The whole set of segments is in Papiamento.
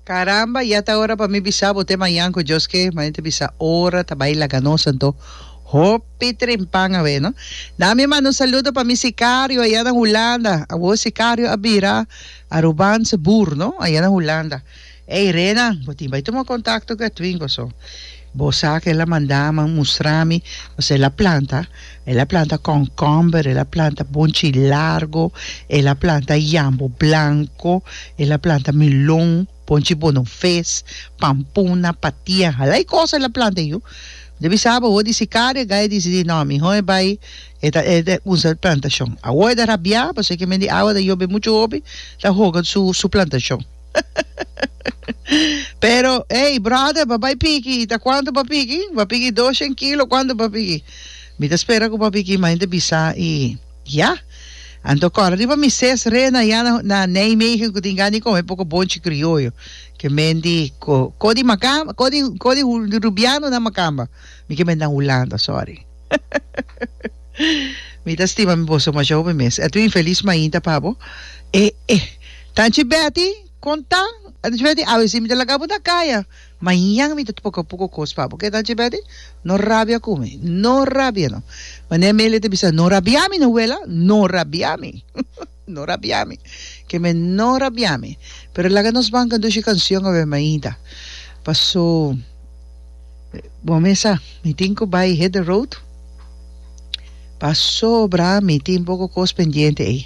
Caramba ya ta ora pa mi bisa bo te mayan cu Dios ke ma ente bisa ora ta bai laga nos anto hopi trimpan awe no na mi manda un saludo pa mi sicario aya na Hulanda awo sicario a bira Arubanse boer no aya na Hulanda ey Renan bo tin bai tuma contacto cu Edwin goso. Bo sa cu el a manda mi mustra mi, pasobra el a planta, el a planta kònkòmber, el a planta bonchi largo, el a planta yambo blanco, el a planta melon, bonchi bonoves, pampuna, patia, hala cosa el a planta e yu ta bisa bo awor di si kara e gai e dicidi no mihor e bai e ta e ta usa e plantacion awor e ta rabia pasobra kier mende agua ta yobe mucho hopi ta hoga su su plantacion. Pero, ey, brother, pa bai piki, ta cuanto pa piki? Pa piki doshen kilo, cuanto pa piki? Mi ta spera cu papi Kima hende bisa y ya. Anto cora riba mi ses rena ya na, na Nijmegen cu tin gani come poco bonchi crioyo. Que men di co, co di macamba, co di, co di rubiano na macamba. Mi que men na Hulanda, sorry. Mi ta stima mi boso mashau mi mes. Etu infelis mainta pa bo. E e. Tanchi Betty, kon ta? Tanchi Betty, awe si mi ta laga bo na kaya. Mañan mi ta tupaka puko kos pa bo. Ke Tanchi Betty? No rabia ku mi. No rabia no. Mane Amelia ta bisa, no rabia mi no wela, no rabia mi. No rabia mi. Ke me no rabia mi. Pero laga nos ban conduci cancion awe mainta. Paso bo mesa mi tin cu bay hit the road. Pasobra mi tin poco cos pendiente ey.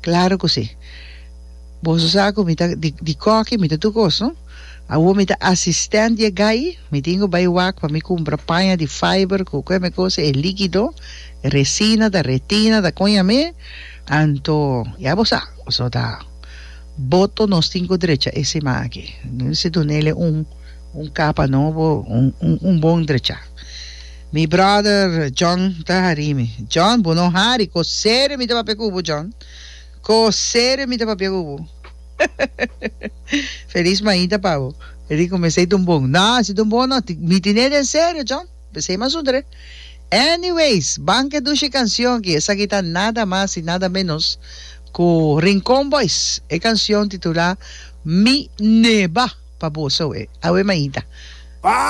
Claro cu si. Boso sa cu mi ta di di coki mi ta tur cos no. Awo mi ta assistent di e guy. Mi tin cu bay wak pa mi cumpra paña di fiber cu cu e me cosa e liquido, e resina ta retina ta coña me. Anto, ya bo sa, boso ta boto nos tin ku drecha e siman aki. Si dunele un un kapa nobo, un un un bon drecha. Mi brother John ta hari mi, John bo no hari, ko serio mi ta papia ku bo John, ko serio mi ta papia ku bo. Feliz mainta pa bo. E di kuminsei dun bon, no si dun bon no, mi tine den serio John. P'esei mas un dret. Anyways, ban ke dushi canción aki. Esaki ta nada mas y nada menos cu Rincon Boys e canción titula Mi Neba pa boso awe mainta.